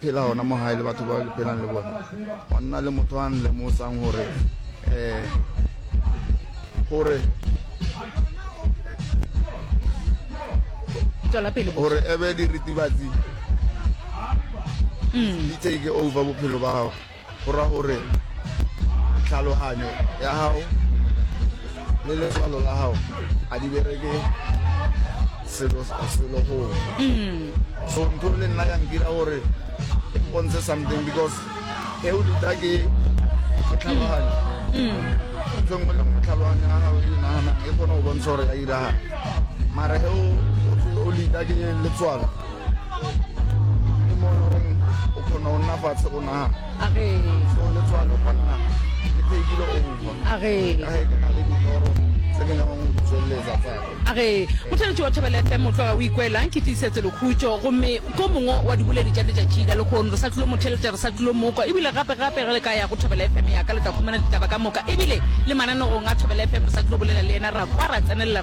Phela gona mo gae le batho ba ke phelang le bona, go nna le motho a nlemosang gore um gore gore ebe diritibatsi mm. di take over bophelo ba gago go ra gore tlhaloganyo ya gago le letswalo la gago a di bereke selo selo go mm. so ntho le nna ya nkira gore e mpontshe something because e o duta ke ke tlhaloganyo mm. ntho e nngwe le nngwe tlhaloganyo ya gago e nagana e kgone go bontsha gore ya iragala mara e o lita ke letswalo age mothaletši wa thobele fm o tloga o ikwelang ke tiisetso lekhutšo gomme ko mongwe wa diboledi tša letšatši la lekgono re sa tlilo motheletša re sa tlilo mokwa ebile gape gape re le ka ya go thobele fm yaka le tla fumana ditaba ka moka ebile le mananegong a thobele fm re sa tlilo bolela le yena ra kwa ra tsenelela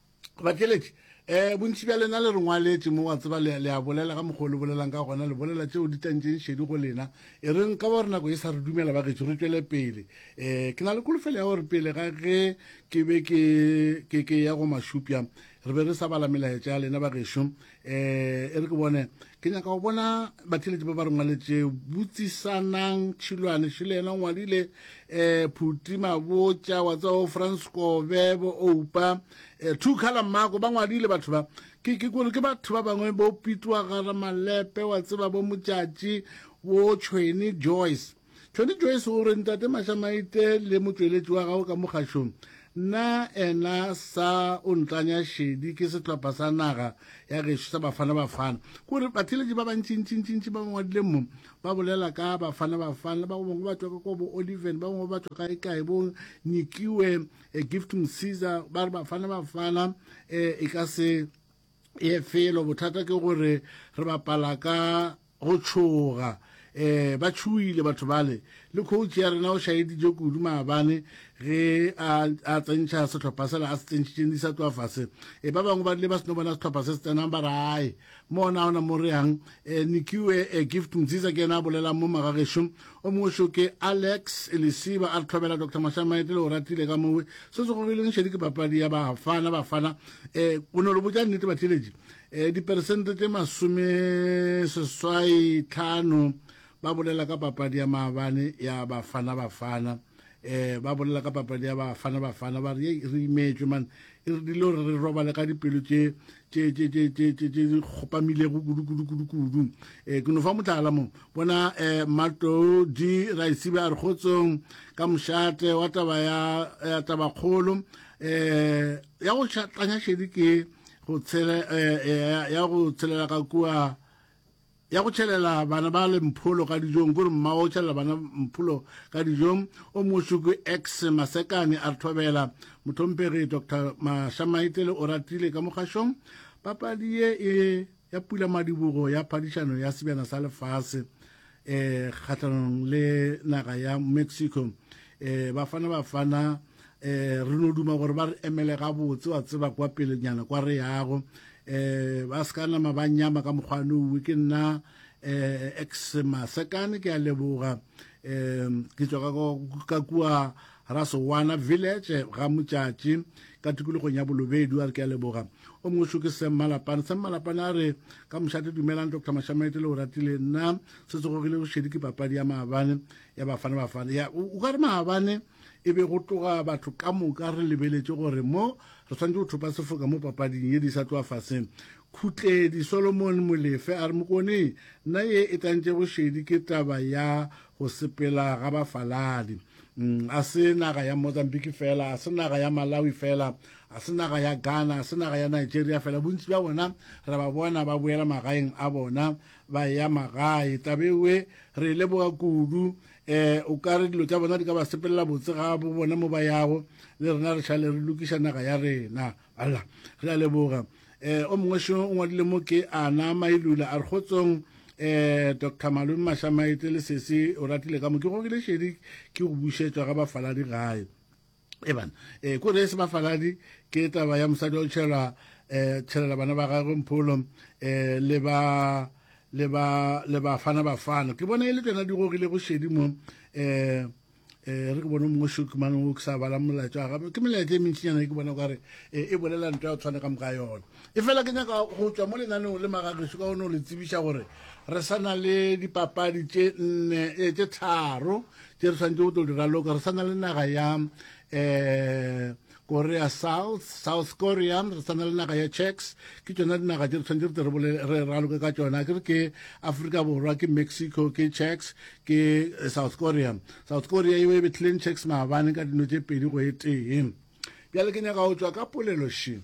Batšweletši, um bontši bja lena le re ngwaletše mo, wa tseba, le, le a bolela ka mokgwa o le bolelang ka gona, le bolela tšeo di tantšeng šedi go lena. E reng ka gore nako e sa re dumela, bagetšo, re tšwele pele. Um ke na le kolofelo ya gore pele ga ge ke be ke, ke, ke ya go Mashupja, re be re sa bala melaetša ya lena, bagešu. eh e re ke bone ke nyaka go bona batheletši ba ba re ngwaletše botsisanang tšhilwane še le yena o ngwadile um phuti mabotša wa tsa o france kobe bo oupa um two color mako ba ngwadile batho ba ke ke kore ke batho ba bangwe bo pitwa gara malepe wa tseba bo motšatši bo tšhweni joyce Tony Joyce o re, Ntate Mašamaite le motšweletši wa gago ka mo kgašong, na ena sa o ntlanya šedi ke sehlopha sa naga ya gešo sa Bafana Bafana. Ke gore batheeletši ba bantšintšintšintši ba ba ngwadileng mo ba bolela ka Bafana Bafana, le ba go bangwe ba tšwa ka kwa bo Oliven, ba bangwe ba tšwa kaekae, bo Nyikiwe, eh, Gift Msiza, ba re Bafana Bafana eh, e ka se e felo bothata ke gore re bapala ka go tšhoga um ba tšhoile batho bale le coach ya rena o šaeditše kudu maabane ge a tsentšha sehlopha sela a se tsentšhitšeng di sa tloa fase e ba bangwe ba rile ba seno bona sehlopha se se tsenang ba rae mona ona mo reyang um nikiwe um gift mziza ke yena a bolelang mo magagešo O mošo ke Alex Lesiba a re tlhobela Doctor Mahlamaete le Oratile ka mowe. Se se gogileng šedi ke papadi ya Bafana Bafana. E, o no le botša nnete batheeletši. E, diperesente tše masome seswai tlhano ba bolela ka papadi ya maabane ya Bafana Bafana. E, ba bolela ka papadi ya Bafana Bafana ba re, Yei, re imetšwe man. E re dilo re robale ka dipelo tše tše di kgopamilego kudu-kudu-kudu-kudu um eh, ke no fa motlala mo bona um eh, matou di raisibe a re kgotsong ka mošate wa taba ya tabakgolo um eh, ya go tanya šedi ke eh, ya go tshelela ka kua ya go tšhelela bana ba le mpholo ka dijong kore mma o tšhelela bana mpholo ka dijong o mošuku x masekane a re thobela motlhomphegi dr mashamaitele o ratile ka mogašong papadi ye e ya pula madibogo ya phadišano ya sebjana sa lefase um kgatlhanong le naga ya mexico um bafana bafana eh re no duma gore ba re emele ga botse wa tseba kwa pele nyana kwa re yago eh ba ska nama ba nyama ka mokgwane uwe ke nna eh ex masekane ke a leboga eh ke tswa ka kwa ra sowana village ga motšatši ka tikologong ya bolobedi a re ke a leboga o mongwe šo ke semmalapane semmalapane a re ka mošate dumelang dr mashamete le o ratile nna se tsegogile bošedi ke papadi ya maabane ya bafana bafana ya o ka re maabane e be go tloga batho ka moka re lebeletše gore mo re swanetše go thopa sefoka mo papading ye di sa tloa faseng khutledi solomon molefe a re mokone nna ye e tantše bošedi ke taba ya go sepela ga bafaladi mm, a se naga ya mozambique fela a se naga ya malawi fela a se naga ya ghana a se naga ya nigeria fela bontši bja bona re ba bona ba boela magaeng a bona ba ya magae tabewe re leboga kudu eh o ka re dilo tša bona di ka ba sepelela botse ga bo bona mo ba yago le rena re šale re lokiša naga ya rena alla re a leboga eh o mongwe šo o ngwadile mo ke ana mailula a re kgotsong um eh, dr malome mašamaete le sese o ratile ka mo ke gogile šedi ke go bušetšwa ga bafaladi gae Eban, e, ko re se bafaladi ke taba ya mosadi o tšhelwa e, tšhelela bana ba gagwe mpholo e, le ba le ba le bafana bafana ke bona e le tsena di gogile go šedi mo e, eh re ke bone mongwe shoki mane o ke sa bala molaetsa wa gape ke melaetsa e mentšinyana e ke bona kare eh, e bolela nto ya tshwane ka moka yona e fela ke nyaka go tswa mo lenaneng le magageso ka gone o le tsebiša gore re sa na le dipapadi tše nne eh, tše tharo tše re swanetše go tlo di raloka re sa na le naga ya um korea south south korea re sa na le naga ya checks ke tsona dinaga tše re tshwanetse re tle re raloke ka tsona ke re ke africa borwa ke mexico ke checks ke eh, south korea south korea eo e betlhileng checks maabane ka dino tše pedi go e tee bjale ke nyaka go tswa ka polelošeng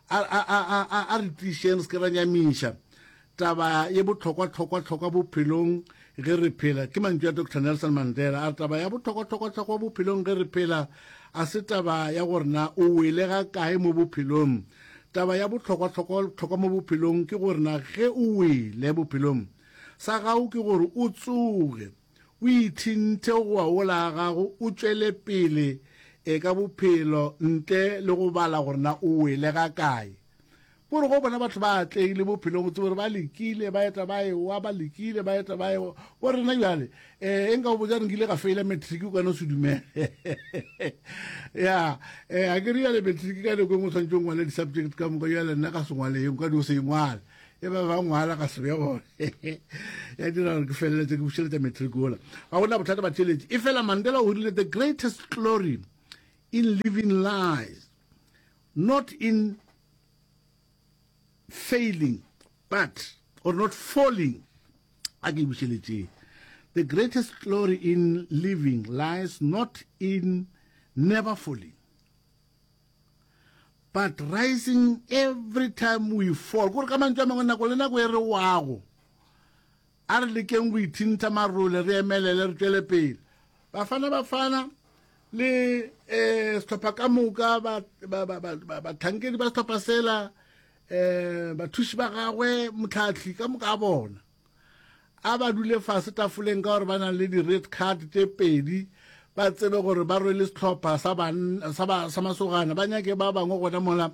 A, a, a, a, a, a re tlišeng re se ke ra nyamiša taba ye bohlokwa-hlokwa-hlokwa bophelong ge re phela. Ke mantšu a Doctor Nelson Mandela. A re taba ya bohlokwa-hlokwa-hlokwa bophelong ge re phela a se taba ya gore na o wele ga kae mo bophelong. Taba ya bohlokwa-hlokwa-hlokwa mo bophelong ke gore na ge o wele bophelong, sa gago ke gore o tsoge. O ithinthe go wa wola a gago o tšwele pele e ka bophelo ntle le go bala gore na o wele ga kae. Ko re go bona batho ba atlegile bophelong o tsebe gore ba lekile ba eta ba ewa ba lekile ba eta ba ewa ko rena jale e e nka o botsa re nkile ga feila matric o ka no se dumele ya e a ke re jale matric ka nako e nngwe tshwanetse o ngwale di-subject ka moka jale nna ka sengwale e nka di o se e ngwale e ba ba ngwala ga sebe gone ya dira gore ke feleletse ke bušeletša matric ola ga gona bothata ba theletše e fela mandela o rile the greatest glory in living lies not in failing but or not falling a ke bušeletseng the greatest glory in living lies not in never falling but rising every time we fall kore ka mantšu a mangwe nako le nako e re wago a re lekeng go ithintha marole re emelele re tšwele pele bafana bafana le um setlhopha ka moka batlhankedi ba setlhopha sela um bathuši ba gagwe motlhatlhi ka moka a bona A ba dule fase tafoleng ka gore ba na le di-red card tše pedi, ba tsebe gore ba rwele sehlopha sa, sa, ba, sa masogana. Ba nyake ba bangwe gona mola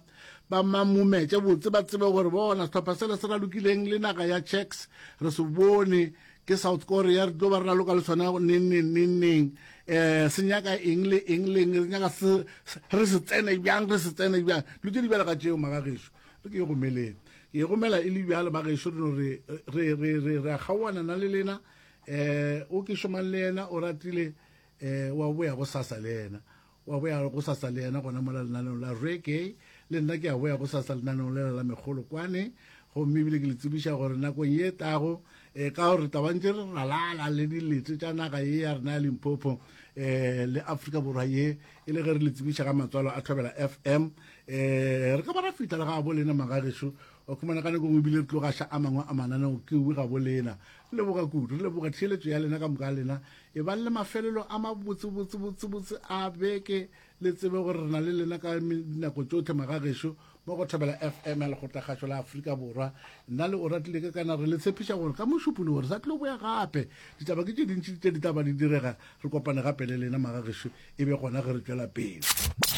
ba mamumetše botse, ba tsebe gore bona sehlopha sela se ralokileng le naga ya Czechs re se bone ke South Korea re tlo ba re raloka le sona neng neng neng neng um se nyaka eng le eng le eng re nyaka se re se tsene bjang re se tsene bjang dilo tše di bjalo ka tšeo magageso re ke e romeleng ke e romela e le bjalo ba gešo re no re re re re re kgaoana na le lena eh o ke šomang le yena o ratile eh wa boya go sasa le yena wa boya go sasa le yena gona mo la lena le la re ke le nna ke a boya go sasa le nana le la megolo kwane go mme bile ke le tsebiša gore nako ye tago eh ka gore tabantse re ralala le dilete tša naga ye ya rena ya Limpopo eh le Afrika borwa ye e le ge re le tsebiša ga matswalo a thobela fm um re ka ba ra fitlha le ga bo lena magageso o khumana ka nako ebile re tlogaša a mangwe a mananeo ke uwe ga bo lena re leboga kudu re leboga theeletso ya lena ka moka lena e bang le mafelelo a mabotsebotsebotsebotse a beke le tsebe gore re na le lena ka nako tsotlhe magageso mo go thobela fm ya lekgotlakgašo la aforika borwa nna le o ratile ke kana re le tshepiša gore ka mošupolo gore sa tlilo boya gape ditaba ke tše dintši tše di taba di direga re kopane gape le lena magagešo e be gona ge re tšwela pele